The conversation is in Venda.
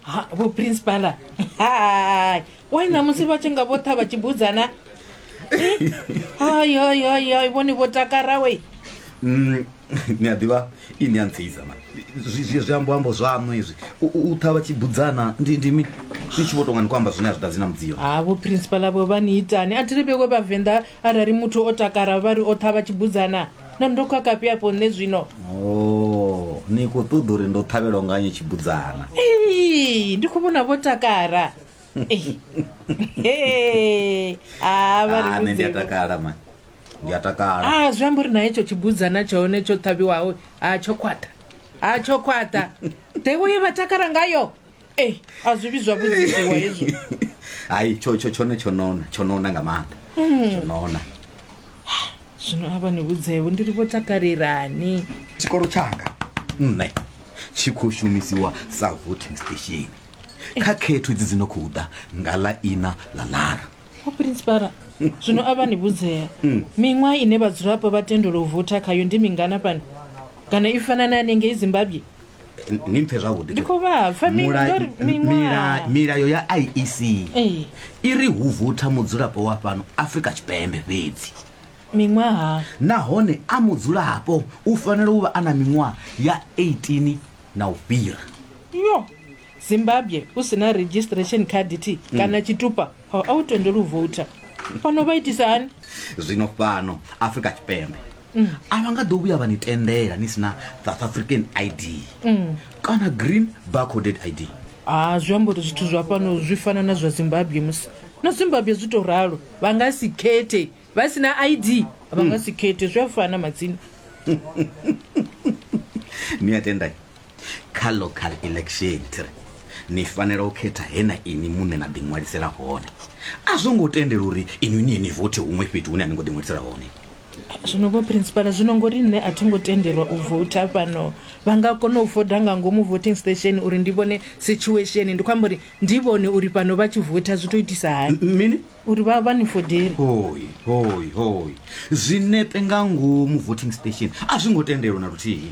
ha vho principala hai wai ṋamusi vha tshi nga vho ṱha vha tshi budzana hai hai hai hai vhone vho takarawe Mm, ni a ḓivha i ni a ntseiza ma Zwi- zwi zwi ambo ambo zwaṋu izwi U- u u ṱhavha tshi budzana ndi ndi mi ni tshi vho tonga ni khou amba zwine a zwi ḓadzi na mudziyo ha vho principala vho vha ni itani a thi ri vhewe vhavenḓa arali muthu o takara vha ri o ṱha vha tshi budzana na ndo khakafhi afho nṋe zwino oh, ni khou ṱoḓa uri ndo ṱhavhelwa nganye tshibudzana Ei, ndi khou vhona vho takara Ei. Hey. Ah, vha ri Ah, nṋe ndi a vhudze. takala ma ndi a takala Ah, zwi amba uri na hetsho tshibudzana tsha hone tsho ṱhavhiwaho ha tsho khwaṱha ha tsho khwaṱha nḓevho ye vha takala ngayo ee a zwi vhidzwa vhudziwa hezwo hayi tsho tsho tshone tsho nona tsho nona nga maanḓa tsho nona zwino a vha ni vhudzevo ndi ri vho takalelani tshikolo tshanga nṋe tshi khou shumisiwa sa voting station kha khetho dzi dzi no khou ḓa nga ḽa ina ḽa lara o principala zwino a vha ni vhudzea miṅwaha ine vhadzulapo vha tendelwa u votha khayo ndi mingana fhano kana i fana na yanengei zimbabwe ni mphe zwavhuḓi Ndi khou vha pfa, mi- Mula- ndori miṅwaha. mila- milayo ya iec Ee. i ri hu votha mudzulapo wa fhano afrika tshipembe fhedzi miṅwaha nahone a mudzulapo u fanela u vha a na miṅwaha ya 18 na u fhira yo Zimbabwe u si na registration card thi kana tshitupa a a u tendelwi u voutha fhano vha itisa hani zwino fhano afrika tshipembe a vha nga ḓo vhuya vha ni tendela ni si na south african id kana green barcoded id ha zwi amba uri zwithu zwa fhano zwi fana na zwa zimbabwe musi na zimbabwe zwi tou ralo vha nga si khethe vha si na id vha nga si khethe zwi a fana madzina ni a tendai kha local election tiri ni fanela u khetha he na ini muṋe na ḓiṅwalisela hone a zwo ngo tendela uri inwi ni ye ni vothe huṅwe fhethu hune a ni ngo ḓiṅwalisela hone zwino vho principala zwino ngori nṋe a thi ngo tendelwa u vouta fhano vha nga kona u foda nga ngomu voting station uri ndi vhone situation ndi khou amba uri ndi vhone uri fhano vha tshi vouta zwi to itisa hani M- mini uri vha vha ni fodeli hoi hoi hoi zwinepe nga ngomu voting station a zwi ngo tendelwa na luthihi